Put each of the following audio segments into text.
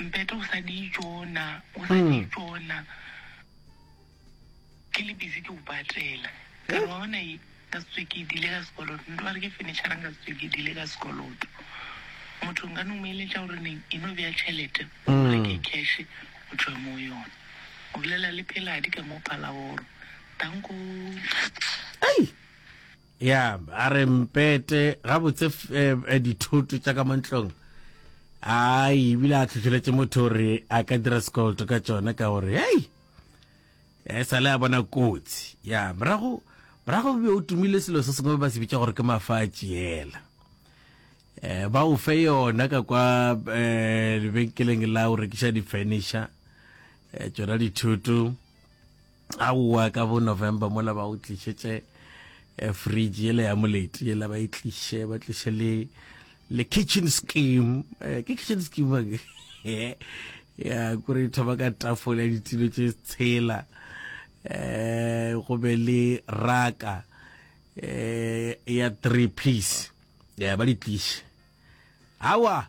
Mpete o sa di tšona, o sa di tšona. Ke le busy ke o patela. Ka re wa bona e ka se tswe ke dile ka sekoloto. Nto ba re ke furniture-ra nka se tswe ke dile ka sekoloto. Motho nka no mo eletša gore neng e no bea tšhelete o reke cash o tšwe mo yona. O bolela le pheladi ka mo palaboro. Danko. Ei! ya a re mpete gabotse eh, dithoto tša ka mo ntlong a ebile a tlhotlheletse motho gore a ka dira sekoloto ka tsone ka gore hei e sale a bona kotsi ya morago morago be o tumile selo se sengwe ba se bitsa gore ke mafatše ela um eh, ba o fe yona ka kwa um lebenkeleng la o rekiša di-furniture um tsona dithoto Aowa ka bo November mola ba o tlišetše eh, fridge yela ya moleti yela ba e tliše ba tliše le le kitchen scheme eh, ke kitchen scheme ya kore thoma ka tafole ya ditilo tše tshela eh go be le raka eh ya three piece ya ba di tliše awa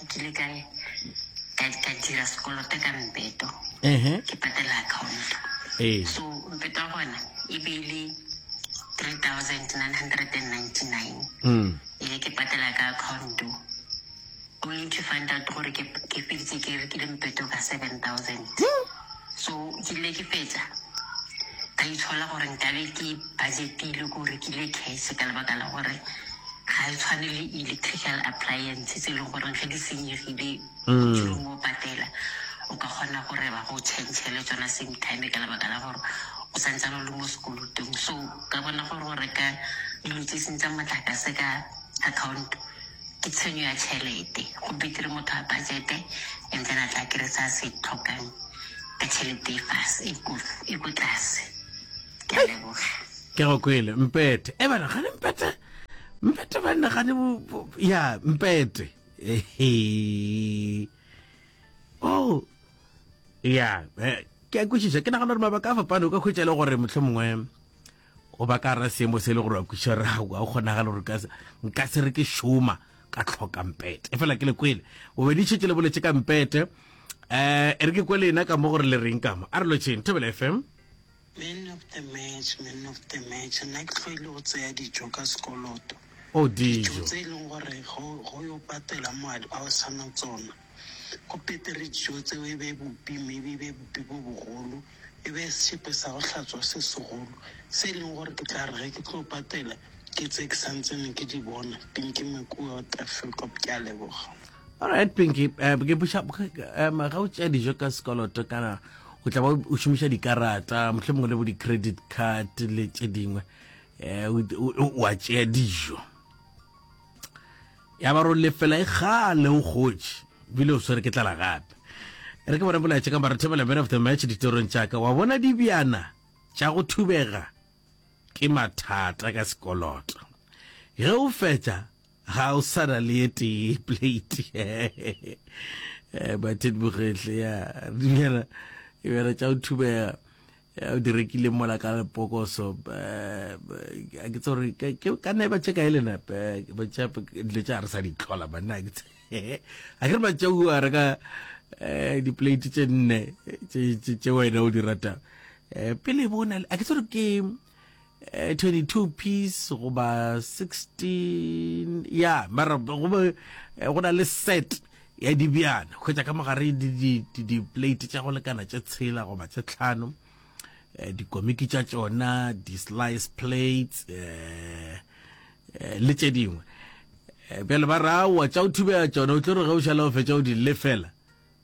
nkile ka ka ka dira sekoloto ka mpeto ehe ke patela account ee so mpeto ya gona e be e le 3999 mm ee ke patela ka account only to find out gore ke ke feditse ke rekile mpeto ka 7000 so ke ile ke fetsa ka itshola gore nkabe ke budgetile ko rekile case ka lebaka la gore Ga e tshwane le electrical appliance tse e leng gore ge di senyegile o dule mo patela. O ka kgona gore ba go change-ele tsona same time ka lebaka la gore o sa ntsane o le mo sekolotong. So ka bona gore go reka dilo tse seng tsa motlakase ka account ke tshenyo ya tšhelete. Go betere motho a budget-e and then a tla a kry-e se a se tlhokang ka tšhelete e ko tlase. Ke a leboga. Ke a go kwele, Mpete. E bana, gane Mpete? Mpete banna gane bo... Ya, Mpete. Ehe. Oh. Ya, eh, ke a kwešiša. Ke nagana gore mabaka a fapane o ka hwetša e le gore motlho mongwe o ba ka ra seemo se e le gore wa kwešiša ra ga o kgonagale gore ka se- nka se re ke šoma ka tlhoka mpete e fela ke le kwele o be di šetse le boletse ka mpete um e re ke kwele ena ka mo gore le reng kamo a re lotšheng thobela fm Man of the match, man of the match, nna ke tlo ile go tseya dijo ka sekoloto. Oh dijo. Dijo tse e leng gore go go yo patela moadi ba o sana tsona. Go petere dijo tseo e be bupi mme e be bupi bo bogolo. E be sesepe sa go hlatswa se segolo se e leng gore ke tla re ge ke tlo patela ke tse ke santsene ke di bona pele ke makuwa out Afrika. Ke a leboga. alright pinky eh, ke buša um ga o tšea dijo ka sekoloto kana o tla ba o šomiša dikarata motlhe mongwe le bo di-credit card le tše dingwe um wa tšea dijo ya ba ro lefela e gale o gotše bile o swere ke tlala gape re ke bona bolaetse ka marathebela man of the match ditorong tšaka wa bona dibjana tša go thubega ke mathata ka sekoloto ge o fetša Ga o sa na le ye tee plate. Batin Bogetle, ya, dumela, ebera tša o thubega, ya o di rekile mola ka lepokoso, a ke tsore, ke ka neba tše ka elena, ba tša, dilo tša re sa di tlola, banna, ke tse, a ke re ba tša u a reka eh, di plate tše nne, tše wena o di rata, eh, pele bona, a ke tsore ke, eh, 22 piece goba 16 ya mara gobe eh, go na le set ya dibjana go tša ka mogare di-plate tša go lekana tše tshela goba tše tlhano eh, dikomiki tša tšona di-slice plates um le tše dingwe bjale ba ra wa tša o thubea tšona o tlo re ge o šala o fetša o di lefela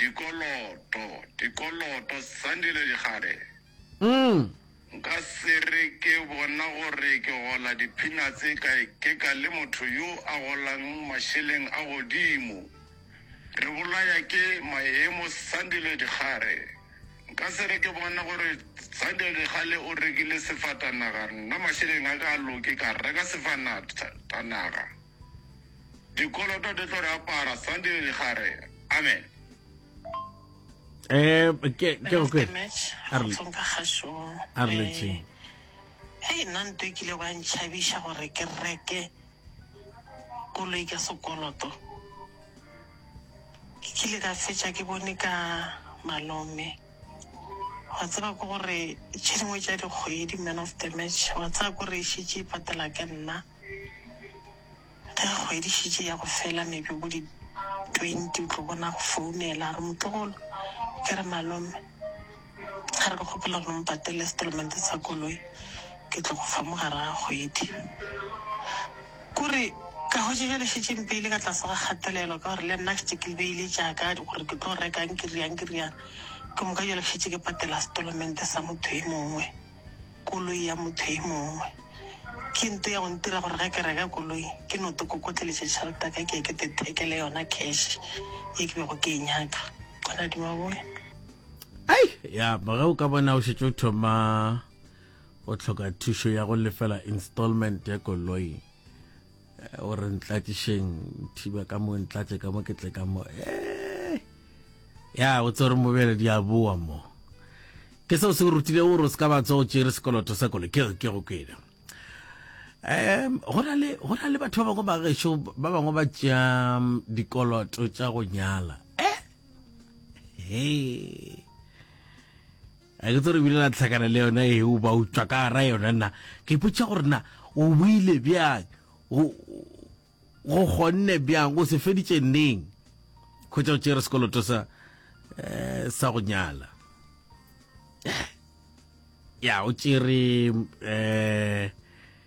Dikoloto, dikoloto, Sandile Dikgale. Nka se re ke bona gore ke gola di-peanuts ka ikeka le motho yo a golang mašeleng a godimo. Re bolaya ke maemo, Sandile Dikgale. Nka se re ke bona gore Sandile Dikgale o rekile sefatanaga, nna mašeleng a ka a loke ka reka sefanatanaga. Dikoloto di tlo re apara Sunday le gare. Amen. Eh, ke ke go kwe. Arle. Tsonka gašo. Arle tse. Hey, nna nto e kile ba ntšhabiša gore ke reke koloi ka sekoloto. Ke kile ka fetša ke bone ka malome. Wa tseba ke gore tše dingwe tša dikgwedi man of the match wa tsaya gore e šetše e patela ke nna. Ge kgwedi e šetše e ya go fela, maybe bo di twenty, o tlo bona a go founela a re, Motlogolo, ke re, Malome, a re ke kgopela gore o mpatelele settlement sa koloi, ke tlo go fa mogare ga kgwedi. Kore ka hwetša bjale e šetše e mpeile ka tlase ga kgatelelo ka gore le nna ke šetše ke beile tša ka gore ke tlo reka eng, ke eng, ke eng, ke moka bjale ke šetše ke patela settlement sa motho e mongwe. koloi ya motho e mongwe. Ke nto ya go ntira gore ge ke reka koloi ke no to kokotleletša tšhelete ya ka ke ye ke to ithekele yona cash ye ke bego ke e nyaka. Gona di maboe. ai ya ge o ka bona o šetse o thoma o tlhoka thušo ya go lefela installment ya koloi o re ntlatšešeng thiba ka mo ntlatše ka mo ke tle ka mo eh! ya o tsere mobele di a boa mo ke seo se o rutile o re o se ka batso o tšere sekoloto sa kole ke ke go kwena um go na le batho ba bangwe ba gešo ba bangwe ba tšea um, dikoloto tša go nyala eh hey. Ga ke tso re bile la tlhakana le yona e o ba utswa ka gara yona nna ke ipotša gore na o buile bjang go kgonne bjang o se feditše neng kgwetsa o tšere sekoloto sa eh, sa go nyala eh, ya o tšere um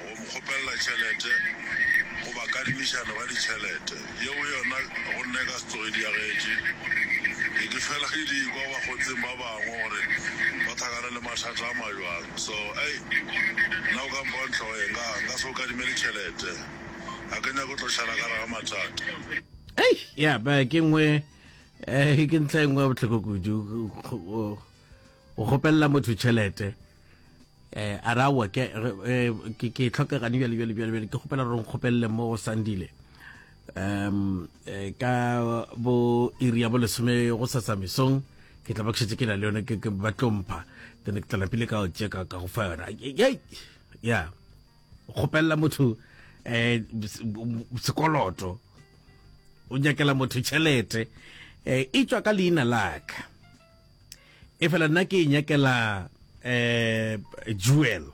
go mo kgopelela tšhelete goba kadimišano ka ditšhelete, yeo yona go nna e ka se tsoge e diagetše. Ke ke fela ke di kwa ba kgotseng ba bangwe gore ba thakana le mathata a majwalo. So, ei, nna o ka mpha wa ntlhogo ye, nka, nka se go kadimele tšhelete. Ga ke nyake go tlo šala ka gare ga mathata. Ei, ya ba ke nngwe, eh, ke ntlha e nngwe ya bohloko kudu, go, go, go kgopelela motho tšhelete. eh a ra wa ke eh, ke ke tlhoka gane bjale bjale bjale ke gopela re nkgopelele mo go sandile um eh, ka bo iri ya bo lesome go sasa mesong ke tla ba ke ke na le yone ke ba tlompha then ke tla lapile ka o tseka ka go fa yona ya kgopelela motho eh sekoloto o nyakela motho tšhelete eh e tswa ka leina laka e fela nna ke inyakela eh jewel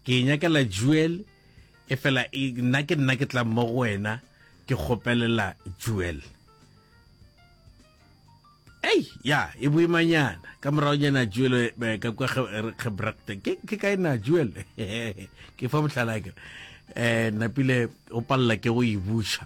ke inyakela jewel e fela nna ke nna ke tla mo go wena ke kgopelela jewel ei ya e boimanyana ka morago nyana jewel eh, ka kwa gebrakte ke kae na jewel ke fa botlhalake um eh, napile o palela ke go e buša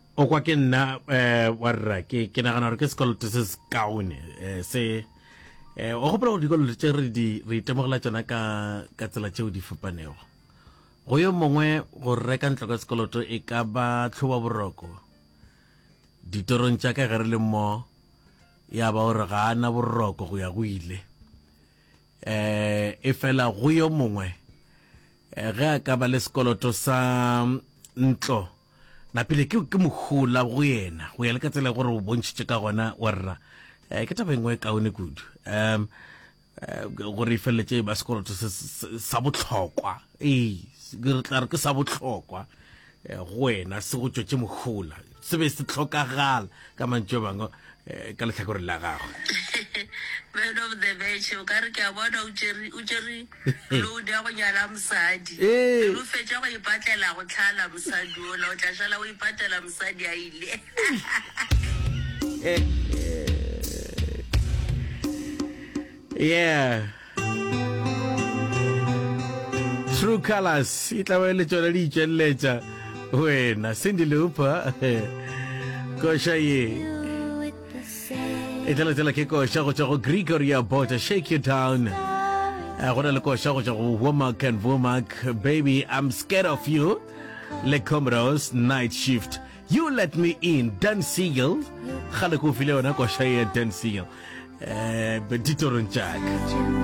O kwa ke nna um wa rra ke ke nagana gore ke sekoloto se se kaone um se um o gopola gore dikoloto tse re di re itemogela tsona ka ka tsela tseo di fapanego go yo mongwe go reka ntlo ka sekoloto e ka ba tlhoba boroko ditorong tša ka ge re le mo ya ba gore ga a na boroko go ya go ile um e fela go yo mongwe ge a ka ba le sekoloto sa ntlo napile ke ke mohula go yena go ya le ka tsela gore o bontšhitše ka gona wa rra um ke taba engwe e kaone kudu um gore e feleletse ba sekoloto sa botlhokwa ee re tla re ke sa botlhokwa go wena se go tšwetse mohula se be se tlhokagala ka mantšo bangwe eh, ka letlhakoreng la gagwe man of the match o ka re ke a bona o tšere- o tšere load ya go nyala mosadi Ee. Pele o fetša go ipatlela go tlhala mosadi ola o tla šala o ipatlela mosadi a ile yeah True Colors e tla ba le tšona di itšweletša wena Cindy Lauper koša ye e tla letela ke koša go tšwa go Gregory Abota Shake You Down eh, go na le koša go tšwa go Womack and Womack Baby I'm Scared of You le Comrose Night Shift You Let Me In, Dan Siegel. Kgale ko file yona koša ya Dan Siegel. Eh, ditorong tša ka.